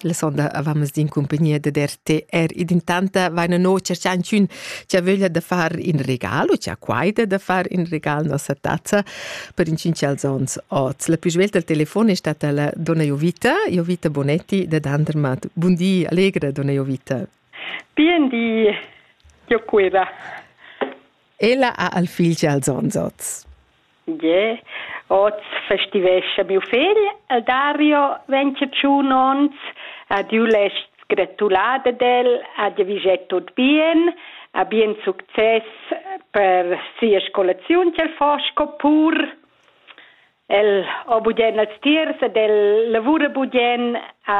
La sonda avamas din cumpagnia dad RTR ed intanta vaina no cerchanchün cha vöglia da far in regal u cha quaida da far in regal nossa tazza per inchinchals ons oz. La più svelta al telefon è stata la donna Jovita, Jovita Bonetti da Dandermat. Bundi, allegra donna Jovita. Bien di, Gioqueva. Ella ha al figl als ons oz. Yeah. Oz festivescha miu fegl e Dario vegn tschun onns. Ad tiu lest gratular ad el, a dir vi jet tut bien, a bien success per sia scolaziun ch'el fa sco pur. El ha bugen als tiers ed el lavura bugen a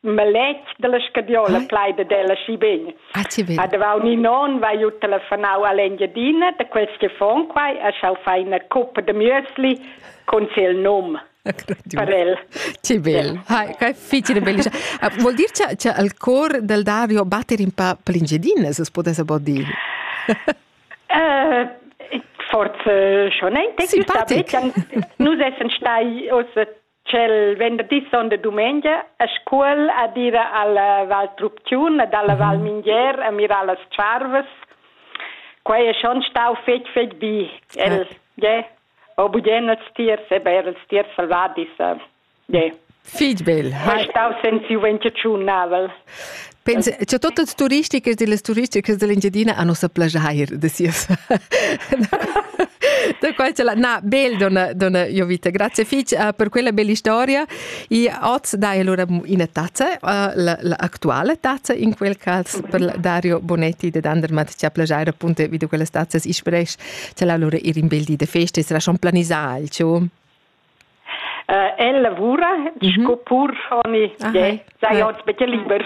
maletg dalla scadiola ah. plai dad ella schi bene. Ah, ti vedi. A davau ni non vai ju telefonau all'Engiadina da quels che fon quai a schau fai una coppa de müsli con il num. per el. Che bel. Hai, che fitile belliscia. Ah, vuol dir che, che al cor del Davio batter in pa plingedina, se potesse po dire? uh, forse schon ein Simpatic. Nus essen stai oss Tschel venderdi son de dumengia a Scuol ad ir alla Val Trupcun ed alla Val Mingher a mirar las tscharvas. Quei è schon stau fetg fetg bi. El, ja, ho bugen els tiers, eber els tiers salvadis. Ja. Fitg bel. Hai stau senz giuventetschun navel. Pensa, che tutte le turistiche delle turistiche dell'Engiadina hanno sa plagiare de sias. da qual ce la na bel donna donna io vita grazie fich uh, per quella bella storia e oz dai allora una tazza uh, la, la attuale tazza in quel caso per Dario Bonetti de Dandermatt ci ha plagiare appunto vide quelle tazze isprech ce la allora ir in bel di de feste sarà schon planisà il ciò El lavura sco purschoni, sai oz betg liber,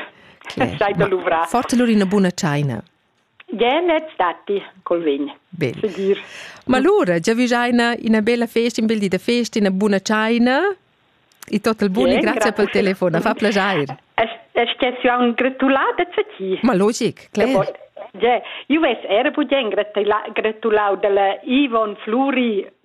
sai da luvrar. Forte lur ina buna tschaina. Genez datti col vin. Bene. Sicur. Ma lura giavigiaina ina bella festa, un bel di da festa, ina buna tschaina e tot il bun e grazie per il telefono, fa piacere. Es che si un gratulata zu ti? Ma logic, klar. Ja, io ves era pugen gratulau dalla Ivon Fluri